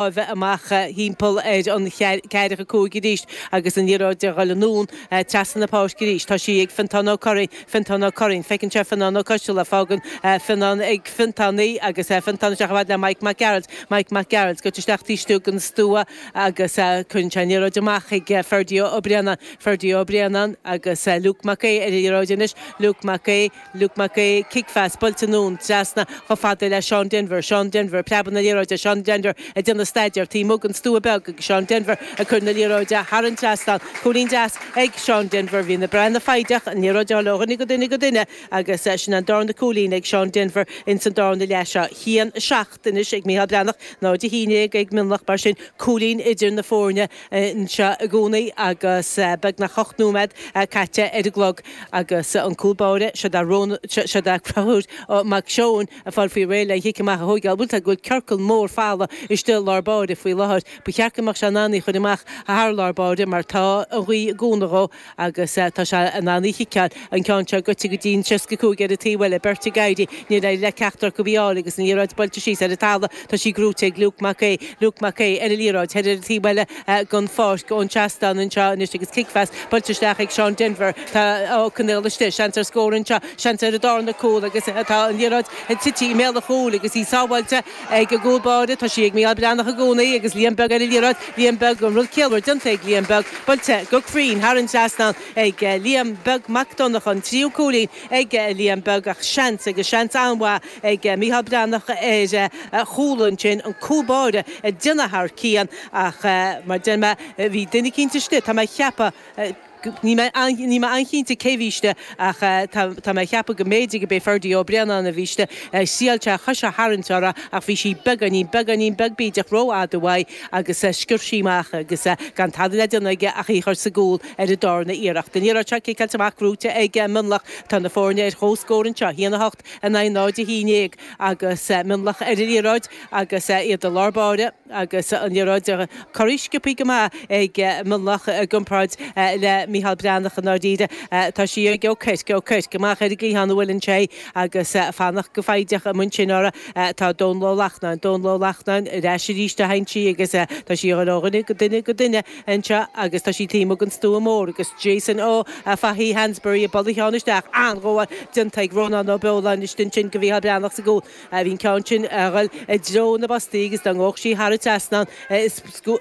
bheith amach thimpeall ar an ceathracha a cúig arís agus an liathróid a dhul anonn trasna na páirce arís. Tá sí ag Fiontán Ó Curraoin. Fiontán Ó Curraoin. Feiceann sé Fionán Ó Coistealla. Fágann Fionán ag Fionntán í agus Fionntán isteach chomh fada le Mike Mac Gearailt. Mike Mac Gearailt. Gaibhte isteach taobh istigh den stua agus cuireann sé an liathróid amach chuig Ferdia Ó Braonáin. Ferdia Ó Braonáin agus Luke Mac Aoidh ar an liathróid anois. Luke Mac Aoidh. Luke Mac Aoidh, cicphas buailte anonn trasna chomh fada le Seán Denvir, Seán Denvir, preabann an liathróid, Seán Denvir ag déanamh staidéir taobh amuigh den stua beag agus Seán Denvir ag cur na liathróide thar an trasnán, cúilín deas ag Seán Denvir, bhí na Breathnaigh foighdeach, an liathróid a dhul ó dhuine go duine go duine agus sin an darna cúilín ag Seán Denvir ins an darna leath seo. Haon 7. Anois ag Micheál Breathnach náid a haon déag ag Mionlach mar sin cúilín idir na foirne anseo i gcónaí agus beagnach ocht nóiméad caite ar an gclog agus an cúl báire seo dar seo dar Craobh Mac Seoin ag fáil faoi réir lena chic amach a thóigeáil. Bhuel tá go bhfuil ciorcal mór folamh istigh i lár báire faoi láthair. Ba cheart go mbeadh sé in ann í chuir amach thar lár báire mar tá an ghaoth i gcónaí dhó. Agus tá sé in ann í a chiceáil. An ceann seo gaibhte go dtí'n seasca 5 ar an taobh eile. Beirt ag éirí. Níor éirigh le ceachtar acu í a fháil agus an liathróid buailte síos ar an talamh. Tá sí gnóite ag Luke Mac Aoidh. Luke Mac Aoidh ar an liathróid thall ar an taobh eile den pháirc ón seastán anseo anois agus cicphas buailte isteach ag Seán Denvir. Tá Ó Conaill istigh. Seans ar scór anseo. Seans ar an darna cúl agus tá an liathróid tite i mbéal an chúil agus í sábháilte. Ag an gcúl báire, tá sí ag Mícheál Breathnach i gcónaí agus Liam Beag ar an liathróid. Liam Beag, an rud ciallmhar déanta ag Liam Beag. Buailte go cruinn thar an trasnán ag Liam Beag. Mac Donnacha, an tríú cúilín ag Liam Beag ach seans, agus seans an-mhaith, ag Mícheál Breathnach ar chúl ansin. An cúl báire ag déanamh thar cionn ach, mar a deir mé, bhí duine eicínt istigh, tá mé ag ceapadh. Níl mé an-chinnte cé a bhí istigh, ach tá mé ag ceapadh go mb'fhéidir gurb é Ferdie Ó Braonáin a bhí istigh. Thriáil sé a chois a tharraingt uirthi, ach bhí sí beagáinín, beagáinín beag bídeach ró-fhada uaidh, agus sciorr sí amach, agus gan tada le déanamh aige ach í a chur sa gcúl ar an dárna iarracht. An liathróid seo ciceáilte amach gnóite ag Mionlach. Tá na foirne ar chomh-scór anseo, haon 8 in aghaidh 0 a haon déag, agus Mionlach ar an liathróid agus iad i lár-báire. Agus an liathróid curtha sciobtha go maith ag Mionlach i gcomparáid le Micheál Breathnach i ndáiríre, tá sí ag Ó Cuirc. Ó Cuirc, amach ar an gcliathán a bhuaileann sé agus fanacht go foighdeach amuigh ansin uirthi atá Dónal Ó Lachtnáin. Dónal Ó Lachtnáin ar ais arís a théann sí agus tá sí ag dul ó dhuine go duine go duine anseo agus tá sí taobh amuigh den stua mór agus Jason Ó Fathaigh, Hansberry, ag bualadh ceann isteach an-ghabháil déanta ag Rónán Ó Beoláin. istigh ansin do Mhicheál Breathnach sa gcúl. Bhí an ceann sin a dhul i dtreo na bpostaí agus dá ngabhadh sí thar an trasnán is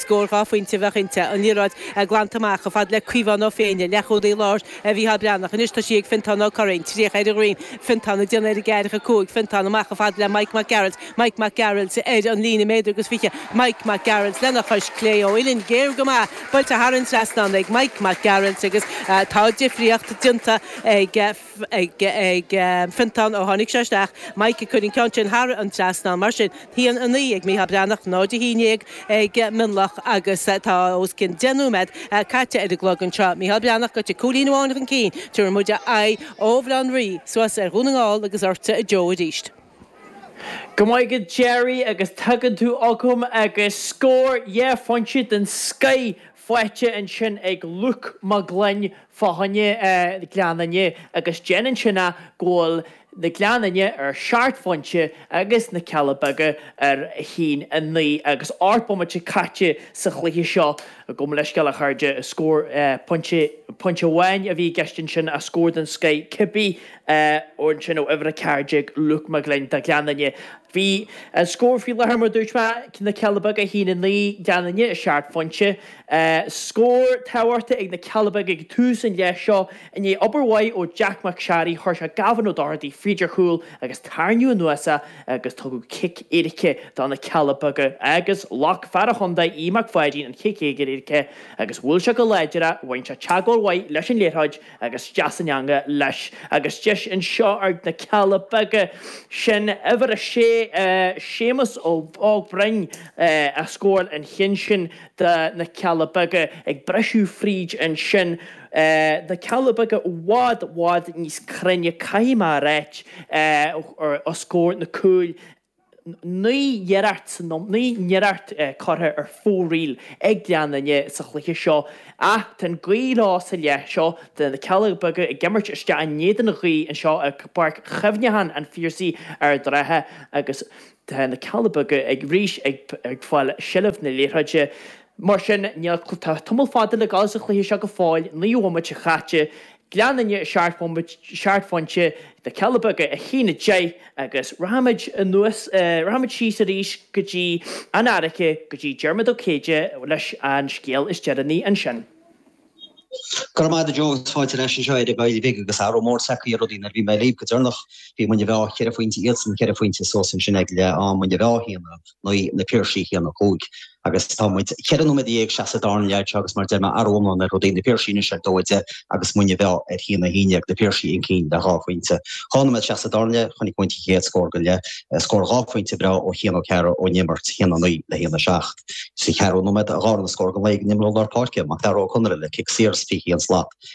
scór dhá phointe a bheadh inti. An liathróid glanta amach, fad le Caomhán Ó Féinne, leathchúlaí láir Mhicheál Breathnach. Anois tá sí ag Fiontán Ó Curraoin. Tríocha ar a dhroim. Fiontán ag déanamh ar an gceathracha cúig. Fiontán amach, fad le Mike Mac Gearailt. Mike Mac Gearailt ar an líne méadar agus fiche. Mike Mac Gearailt lena chois clé ó uillinn ghéar go maith. Buailte thar an trasnán ag Mike Mac Gearailt agus tá difríocht déanta ag. ag Fiontán ó tháinig sé isteach, Mike ag cur an ceann sin thar an trasnán. Mar sin, a haon a 9 ag Micheál Breathnach, 0 a haon déag ag Mionlach agus tá os cionn deich nóiméad caite ar an gclog anseo. Micheál Breathnach, Go dtí cúilín amháin chun cinn, tabharfaidh muid aghaidh ó Bhaile Átha an Rí suas ar Dhún na nGall agus ortsa a Joe arís. Go raibh maith agat Gerry, agus tagann tú chugam agus scór dhá phointe den scoth faighte ansin ag Luke Mac Gloinn, fá choinne Ghleann Fhinne, agus déanann sin go bhfuil na Gleann Fhinne ar seacht bpointe agus na Cealla Beaga ar a haon a naoi agus ocht mbomaite caite sa chluiche seo. Gabh mo leithscéal, a chairde, scór pointe amháin a bhí i gceist ansin, scór den scoth cibé. Ansin ó uimhir 14, Luke McGlynn, do Ghleann Fhinne. Bhí an scór faoi láthair mar dúirt mé, Na Cealla Beaga 1, 9 Gleann Fhinne 7 phointe. Scór tábhachtach ag na Cealla Beaga ag tús an leith seo i ndiaidh obair mhaith ó Jack McSharry, chuir sé Gavin O'Doherty fríd ar chúl agus tarraingeadh anuas é agus tugadh cic éirice do na Cealla Beaga agus ghlac fear an chontae, Aodh Mac Pháidín an cic éirice agus bhuail sé go láidir é, bhain sé teagmháil mhaith leis an liathróid. agus isteach san eangach leis agus deis anseo ag na Cealla Beaga sin uimhir a sé Séamus Óg Ó Broin a scóráil an ceann sin do na Cealla Beaga ag briseadh fríd ansin na Cealla Beaga i bhfad bhfad níos cruinne caithfidh mé a ráit os comhair na cúil Naoi n-iarracht san iomlán, naoi n-iarracht curtha ar fóraoil ag Gleann Fhinne sa chluiche seo ach tá an ghaoth leo sa leath seo tá na Cealla Beaga ag imirt isteach in éadan an ghaoth anseo i bPáirc Chuimhneacháin an Phiarsaigh Ard an Rátha agus tá na Cealla Beaga arís ag fáil seilbh na liathróide. Mar sin, tá tamall fada le gabháil sa chluiche seo go fóill, naoi bhomaite caite. Gleann Fhinne, a seacht phointe, na Cealla Beaga a haon a 10 agus rachaimid anuas, rachaimid síos arís go dtí an Fhairche, go dtí Diarmaid Ó Céide leis an scéal is deireanaí ansin. Go raibh maith agat, Joe, agus fáilte ar ais anseo ar ball beag agus athrú mór tagtha ar rudaí nuair bhí mé libh go deireanach bhí Muine Mheá ceithre phointe iadsan, ceithre phointe suas ansin ag leath am, Muine Mheá a haon, a. Ní na Piarsaigh chéanna a chuaigh, agus tá muid cheithre nóiméad dhéag isteach sa dara leath seo agus mar a deir mé, athrú iomlán ar rudaí. Na Piarsaigh anois ar dó a deich agus Muine Mheá ar haon a haon déag, na Piarsaigh chun cinn le dhá phointe. Dhá nóiméad isteach sa dara leath, chonaic muid an chéad scór den leath, scór dhá phointe breá ó Chian Ó Cearra ón imirt, haon a naoi le haon a seacht. Sa cheathrú nóiméad, an darna scór den leath ag an imreoir lár páirce, Mac Dara Ó Conaire le cic saor as 21 slat.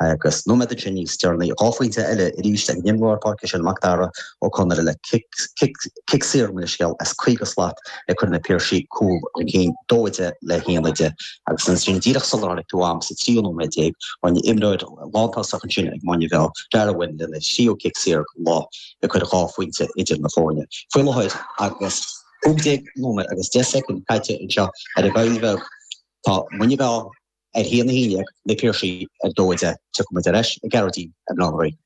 Agus nóiméad ansin níos deireanaí, dhá phointe eile arís ag an imreoir lár páirce sin Macdara Ó Conaire le cic saor mar leithscéal as 50 slat ag cur na Piarsaigh cúl chun cinn, 2-10 le 1-10. Agus ansin díreach sular tháinig tú a'm sa tríú nóiméad déag, bhain imreoir lántosach ansin ag Muine Mheá, Darragh Wynne lena thríú cic saor den lá ag cur dhá phointe idir na foirne. Faoi láthair agus 15 nóiméad agus 10 soicind caite anseo ar an gCoill Bheag, tá Muine Mheá, Ar haon a haon déag, na Piarsaigh ar dó a deich, tiocfaidh muid ar ais ag Gearóidín i mBaile Átha an Rí.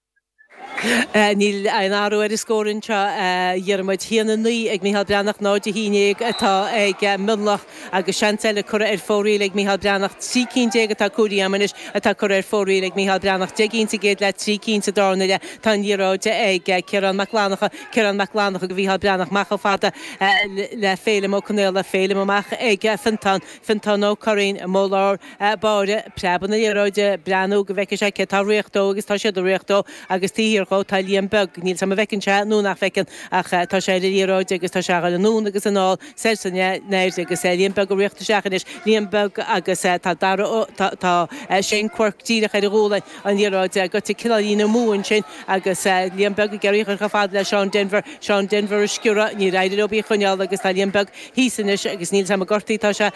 Níl aon athrú ar an scór anseo, a Dhiarmaid. Haon a naoi ag Micheál Breathnach, 0 a haon dhéag atá ag Mionlach agus seans eile curtha ar fóraoil ag Micheál Breathnach. Trí cinn déag atá comhairthe a'm anois atá curtha ar fóraoil ag Micheál Breathnach. Deich gcinn sa gcéad leath, trí cinn sa dara leath. Tá an liathróid ag Ciarán Mac Fhlannacha. Ciarán Mac Fhlannacha do Mhicheál Breathnach. Amach chomh fada le Féilim Ó Conaola. Féilim amach ag Fionntán. Fionntán Ó Curraoin, amuigh i lár báire, ag preabadh na liathróide, ag breathnú go bhfeicfidh sé cé atá réidh dó agus tá siad réidh dó agus taobh thiar dhó tá Liam Beag, níl 's a'm a bhfeiceann sé nó nach bhfeiceann ach tá sé ar an liathróid agus tá sé a' dhul anonn agus anall soir 's aniar agus Liam Beag ag riocht isteach anois, Liam Beag agus tá Darragh Ó, tá, tá Shane Quirke díreach ar a ghualainn, an liathróid goite cineáilín amú ansin agus Liam Beag ag iarraidh a chur chomh fada le Seán Denvir, Seán Denvir ag sciorradh, níor éirigh leis í choinneáil agus tá Liam Beag, thíos anois agus níl 's a'm an gortaithe atá sé,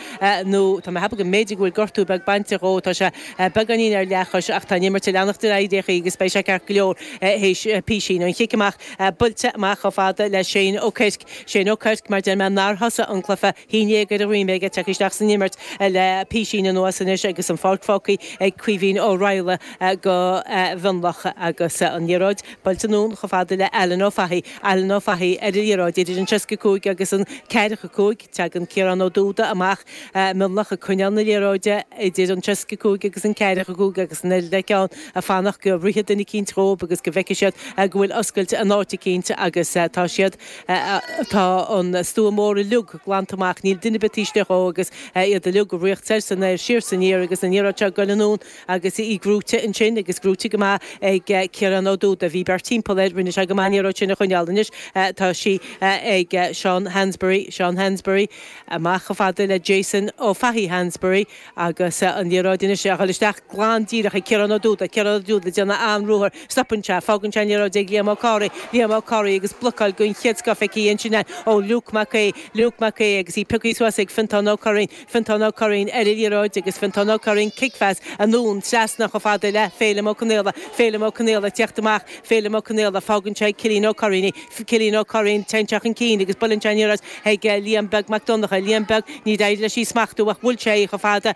nó tá mé ag ceapadh go mb'fhéidir go bhfuil gortú beag bainte dhó, tá sé beagáinín ar leathchois ach tá an imirt ag leanacht ar aghaidh ar aon chaoi agus beidh sé ceart go leor théis písín. An cic amach buailte amach chomh fada le Shane Ó Cuirc, Shane Ó Cuirc mar deir mé, nár thosaigh an cluiche naoi déag ar a dhroim é ag teacht isteach san imirt le písín anuas anois agus an pháirc fágtha ag Caoimhín Ó Raghallaigh do Mhionlach agus an liathróid buailte anonn chomh fada le Alan Ó Fathaigh. Alan Ó Fathaigh ar an liathróid. Idir an seasca a cúig agus an ceathracha a cúig, teagann Ciarán Ó Dúda amach, Mionlach ag coinneáil na liathróide idir an seasca a cúig agus an ceathracha a cúig agus an oiread acu ann ag fanacht go rithfidh duine eicínt dhóibh agus go bhfeicfidh siad go bhfuil oscailt in áit eicínt agus tá siad, tá an stua mór uilig glanta amach, níl duine ar bith taobh istigh dhó agus iad uilig ag riocht soir 's anoir, siar 's aniar agus an liathróid seo ag goil anonn. Agus í grúite ansin, agus grúite go maith ag Ciarán Ó Dúda. Bhí beirt timpeall air, rinne sé go maith, an liathróid sin a choinneáil. Anois tá sí ag Seán Hansbury, Seán Hansbury, amach chomh fada le Jason Ó Fathaigh Hansbury, agus an liathróid anois a dhul isteach glan díreach ag Ciarán Ó Dúda. Ciarán Ó Dúda ag déanamh an-ruathar, stopann sé, fágann sé an liathróid ag Liam Ó Cárthaigh, Liam Ó Cárthaigh agus blocáil den chéad scoth aici ansin ó Luke Mac Aoidh, Luke Mac Aoidh agus í piocaithe suas ag Fiontán Ó Curraoin, Fionntán Ó Curraoin, ar an liathróid agus Fionntán Ó Curraoin, cicphas anonn trasna chomh fada le Féilim Ó Conaola, Féilim Ó Conaola ag teacht amach, Féilim Ó Conaola, fágann sé ag Cillín Ó Curraoin é, Cillín Ó Curraoin, téann sé chun cinn agus buaileann sé aniar as ag Liam Beag Mac Donnacha, Liam Beag, níor éirigh leis í smachtú ach bhuail sé í chomh fada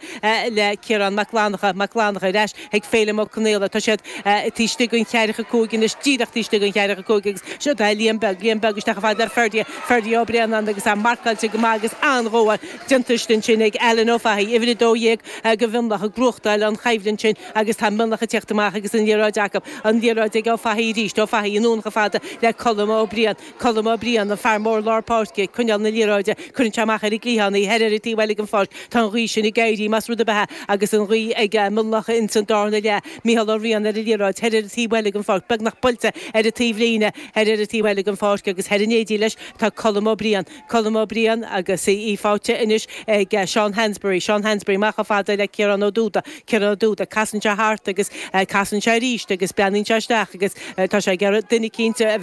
le Ciarán Mac Fhlannacha, Mac Fhlannacha, ar ais chuig Féilim Ó Conaola, tá siad taobh istigh den cheathracha a cúig anois, díreach taobh istigh den cheathracha a cúig agus seo Liam Beag, Liam Beag isteach chomh fada le Ferdia, Ferdia Ó Braonáin agus é marcáilte go maith agus an-ghabháil, déanta ansin ag Alan Ó Fathaigh, uimhir 12, do Mhionlach ag buachtáil an choimhlint sin agus tá Mionlach ag teacht amach agus an liathróid acu. An liathróid ag Ó Fathaigh arís. Ó Fathaigh anonn chomh fada le Colm Ó Briain. Colm Ó Briain, an fear mór lár páirce, ag coinneáil na liathróide. Cuireann sé amach ar an gcliathán í, thoir ar an taobh eile den pháirc. Tá an ghaoth sin ag éirí, más rud ab ea, agus an ghaoth ag Mionlach ins an darna leath. Micheál Ó Riain ar an liathróid, thoir ar an taobh eile den pháirc, beagnach buailte ar an taobhlíne, thoir ar an taobh eile den pháirc agus thoir in éindí leis tá Colm Ó Briain. Colm Ó Briain agus í faighte anois ag Seán Hansbury. Seán Hansbury, amach chomh fada le Ciarán Ó Dúda. Ciarán Ó Dúda, casann sé thart agus casann sé arís agus breathnaíonn sé isteach agus tá sé ag iarraidh duine eicínt a.